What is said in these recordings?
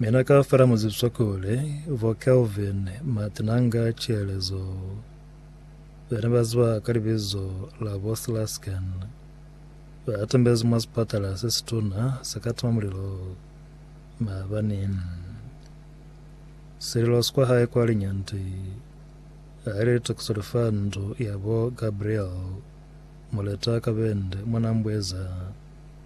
Mina kaufela muzibiso kuli bo Kelvin Matinanga Chielezo bene baziba ka libizo la bo Slasken batembezi mwa sipatala se situna se ka tima mulilo maabani. Sililo sikwa hae kwa Linyanti haile litokiso lifa ndu ya bo Gabriel Moleta Kabende mwana Mbweza.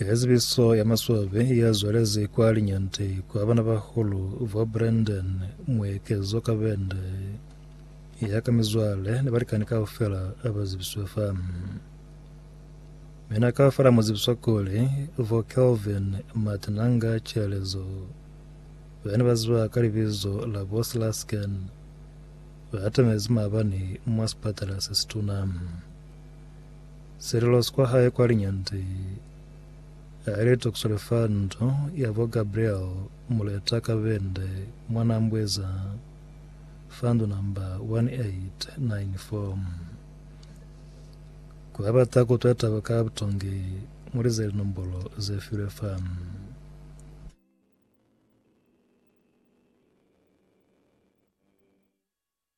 Ke zibiso ya maswabi ya zwalezi kwa Linyanti kwa bana ba hulu ba Brandon Muekezo Kabende ya ka mizwale ni balikani kaufela ba zibiswe fa mina kaufela mu zibiswa kuli vo Kelvin Matinanga Chelezo bani ba ziba ka libizo la bo Slasken ba atamezi maabani mwa sipatala se situna Selelo sikwa hae kwa linyande, haile toksole fa ndu ya bo Gabriel Muleta Kabende mwa Nambweza fa ndu namba 1894. Kwa bata kutwa taba ka butongi, muli ze linombolo ze filwe fa.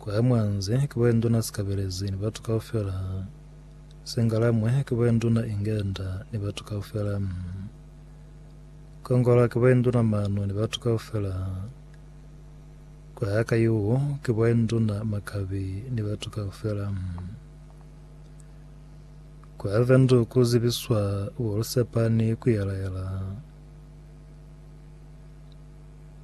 Kwaya mwanze, ki boya nduna sikabelezi ni batu kaufela. Sengalamwe, ki boya nduna ingenda ni batu kaufela. Kongola, ki boya nduna manu ni batu kaufela. Kwaya kayuu, ki boya nduna makabi ni batu kaufela. Kwaya vendu ku zibiswa bolusepa ni kuyela-yela.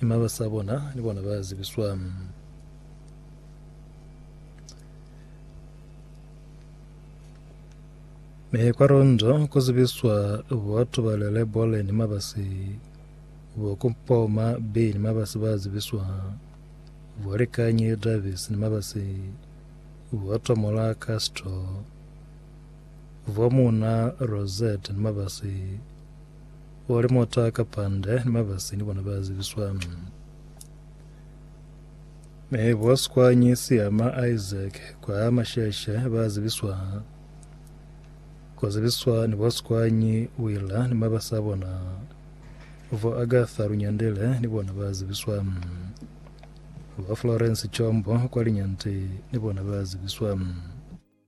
Ni mabasa a bona ni bona ba zibiswa. Mi kwa londo ku zibiswa batu ba lele bole ni mabasi bo ku mpoma bi ni mabasi ba zibiswa bo likanyi Davis ni mabasi bo tomola Castro bo muna Rosette ni mabasi Kuli muta ka pande ni mabasi ni bona ba zibiswa. Mi bo Sikwanyi, Siyama, Isaac kwa Masheshe ba zibiswa. Ku zibiswa ni bo Sikwanyi, Willa ni mabasi a bona. Bo Agatha Lunyandile ni bona ba zibiswa. Bo Florence Chombo kwa Linyanti ni bona ba zibiswa.